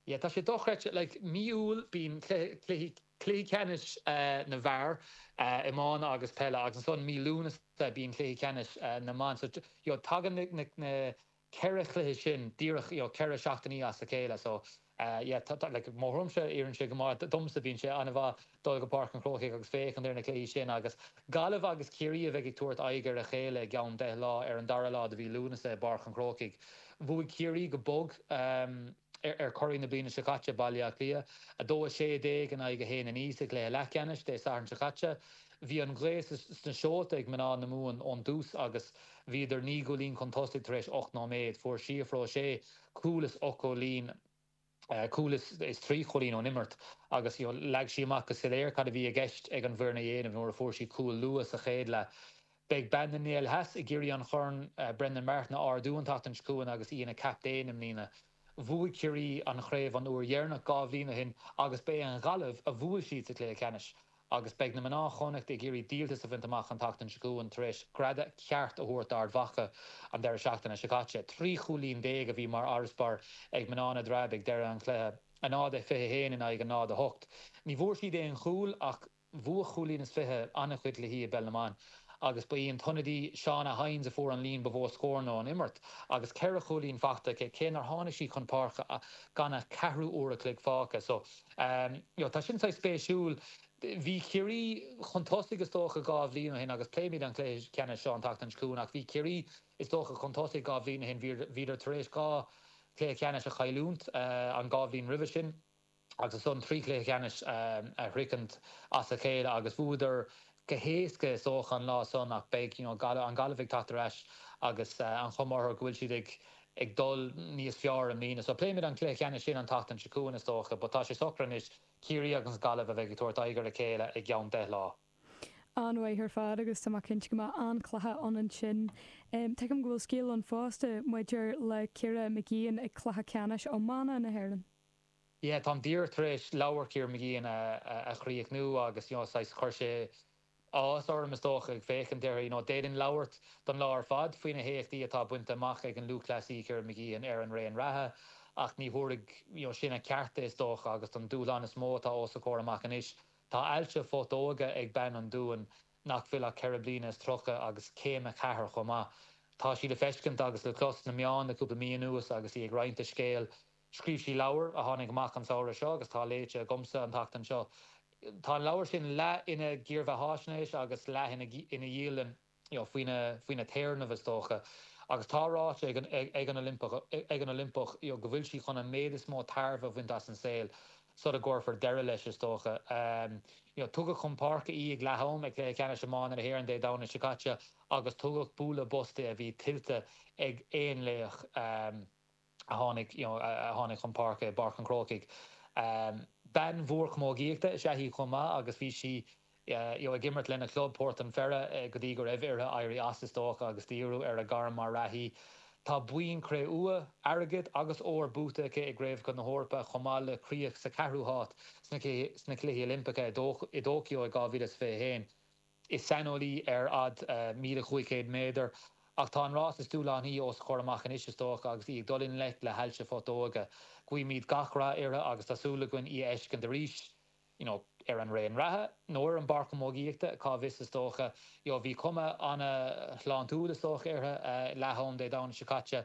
Yeah, tá sé dochreidte, like, Mí Iúil bíonn cluichí ceannais na bhfear, iomána agus peile, agus ansan Mí Lúnasa bíonn cluichí ceannais na mban, so, you know, tagann na ceithre chluiche sin díreach, you know, ceithre seachtainí as a chéile, so, yeah, tá, like, má tá orm,, oireann sé go maith, domsa bíonn sé an-mhaith, dul go Páirc an Chrócaigh agus féachaint ar na cluichí sin agus Gaillimh agus Ciarraí a bheidh ag tabhairt aghaidh ar a chéile i gceann deich lá ar an dara lá de mhí Lúnasa i bPáirc an Chrócaigh. Bhuaigh Ciarraí go bog ar churaidh na bliana seo caite, Baile Átha Cliath, 2 16 in aghaidh 1 9 sa gcluiche leathcheannais Dé Sathairn seo caite. Bhí an ghaoth sna seolta ag mná na Mumhan ón dtús agus bhíodar naoi gcúilín chun tosaigh tar éis ocht nóiméad. Fuair Síofra O'Shea cúl is ocht gcúilín. cúl is trí chúilín ón imirt agus leag sí amach go soiléir cad a bhí i gceist ag an bhfoireann a dhéanamh nuair a fuair sí cúl luath sa chéad leath. Beidh bean na nGael Theas ag iarraidh an Chorn Brendan Martin a ardú an tseachtain seo chugainn agus í ina captaen i mbliana. Bhuaigh Ciarraí an chraobh an uair dheireanach dhá bhliain ó shin agus ba í an Ghaillimh a bhuail siad sa chluiche ceannais. agus beidh na mná Chonnacht ag iarraidh díoltas a bhaint amach an tseachtain seo chugainn tar éis greadadh ceart a thabhairt d'Ard Mhacha an deireadh seachtaine seo caite. Trí chúilín déag a bhí mar fharasbarr ag mná na dTreabh ag deireadh an chluiche, 0-21 in aghaidh 0-8. Ní bhfuair siad aon chúl ach bhuafadh cúilín is fiche an-chuid cluichí i bpeil na mban agus ba í an t-ionadaí Shauna Hynes a fuair an líon ba mhó scóranna ón imirt agus ceithre chúilín faighte aici, cé nár tháinig sí chun páirce gan ach ceathrú uair a chloig fágtha. Ámh, tá sin saghas spéisiúil. Bhí Ciarraí chun tosaigh is dócha dhá bhliain ó shin agus pléimid an cluiche ceannais seo an tseachtain seo chugainn ach bhí Ciarraí is dócha chun tosaigh dhá bhliain ó shin, bhíodar tar éis dhá chluiche ceannais a chailliúnt an dhá bhliain roimhe sin agus ansan trí chluiche ceannais a shroichint as a chéile agus bhuadar go héasca is dócha an lá san ach beidh you know an Gaillimh ag teacht ar ais agus an chuma orthu go bhfuil siad ag ag dul níos fearr i mbliana. So pléimid an cluiche ceannais sin an tseachtain seo chugainn is dócha but tá sé socra anois, Ciarraí agus Gaillimh a bheidh ag tabhairt aghaidh ar a chéile i gceann deich lá. An-mhaith ar fad agus tá mé cinnte go mbeidh an-chluiche ann ansin. Tuigim go bhfuil scéal ann fosta maidir le Ciara Mageean ag cluiche ceannais iomána na hÉireann. yeah táim díreach tar éis leabhar Chiara Mageean a chríochnú agus you know saghas chuir sé áthas orm is dócha ag féachaint uirthi, you know d'fhéadfainn labhairt don lá ar fad faoi na héachtaí atá bainte amach ag an lúthchleasaí Ciara Mageean ar an raon reatha ach ní thabharfadh you know sin a ceart di is dócha agus don dúshlán is mó atá os a comhair amach anois. Tá ailse phutóige ag bean an Dúin nach bhfuil ach ceithre bliana is tríocha agus céim a ceathair chomh maith. Tá sí le feiscint agus le clos sna meáin le cúpla mí anuas agus í ag roinnt a scéil Scríobh sí leabhar a tháinig amach an samhradh seo agus atá léite agamsa an tseachtain seo. Tá an leabhar sin leath ina dhírbheathaisnéis agus leath ina dhialann, faoina téarnamh, is dócha. Agus tá ráite ag an Oilimpeach go bhfuil sí chun an méid is mó tairbhe a bhaint as an saol, sula gcuirfear deireadh leis, is dócha. Tugadh chun páirce í ag leath-am ag Cluiche Ceannais Iomána na hÉireann Dé Domhnaigh seo caite agus tugadh bualadh bos di a bhí tuillte ag aon laoch. a tháinig, you know, a tháinig chun páirce i bPáirc an Chrócaigh. Bean mhór camógaíochta is ea í chomh maith agus bhí sí, you know, ag imirt lena club, Port an Pheire, go dtí go raibh uirthi éirí as, is dócha, agus díriú ar a gairm mar reathaí. Tá boinn chré-umha, airgid agus óir buaite aici i gCraobhacha na hEorpa chomh maith le críoch sa 4ú háit sna Cluichí Oilimpeacha i dTóiceo i 2021. Is saineolaí ar fhad 1,500 méadar, ach tá an rás is dúshlánaí os a chomhair amach anois, is dócha, agus í ag dul i ngleic le hailse phutóige. Guímid gach rath uirthi agus tá súil againn í a fheiscint arís, you know ar an raon reatha, nó ar an bpáirc chamógaíochta, cá bhfios, is dócha. You know bhí cuma an-shláintiúil, is dócha, uirthi, leath-am Dé Domhnaigh seo caite.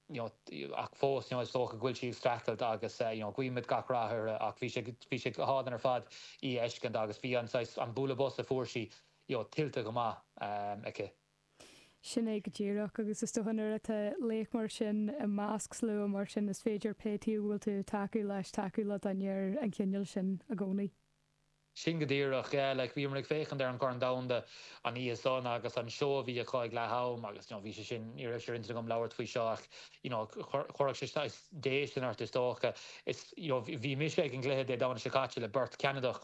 you know ach fós you know is dócha go bhfuil sí ag streachailt agus you know guímid gach rath uirthi ach bhí sé bhí sé go hálainn ar fad í a fheiscint agus bhí an saghas an bualadh bos a fuair sí you know tuillte go maith aici. Sin é go díreach agus is dócha nuair atá laoch mar sin i measc slua mar sin is féidir pé taobh a bhfuil tú ag tacú leis tacú le duine den chineál sin i gcónaí. Sin go díreach. Yeah, like, bhíomar ag féachaint ar an Chorn Domhanda an oíche san agus an seó a bhí acu ag leath am agus, you know, bhí sé sin, ní raibh sé ar intinn agam labhairt faoi seo ach, you know, chuirfeadh sé saghas déistin ort is dócha. Is, you know, bhí mise ag an gcluiche Dé Domhnaigh seo caite le beirt Cheanadach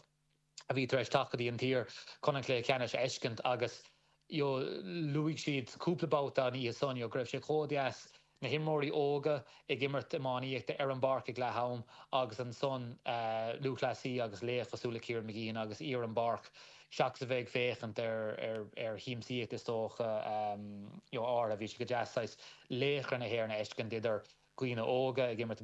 a bhí tar éis teacht go dtí an tír chun an cluiche ceannais a fheiscint agus, you know, luaigh siad cúpla babhta an oíche san you know go raibh sé chomh deas, na himreoirí óga ag imirt iománaíochta ar an bpáirc ag leath-am agus ansan lúthchleasaí agus laoch cosúil le Ciara Mageean agus í ar an bpáirc seachas a bheith ag féachaint ar shiamsaíocht is dócha you know áirithe. Bhí sé go deas saghas laochra na hÉireann a fheiscint idir dhaoine óga ag imirt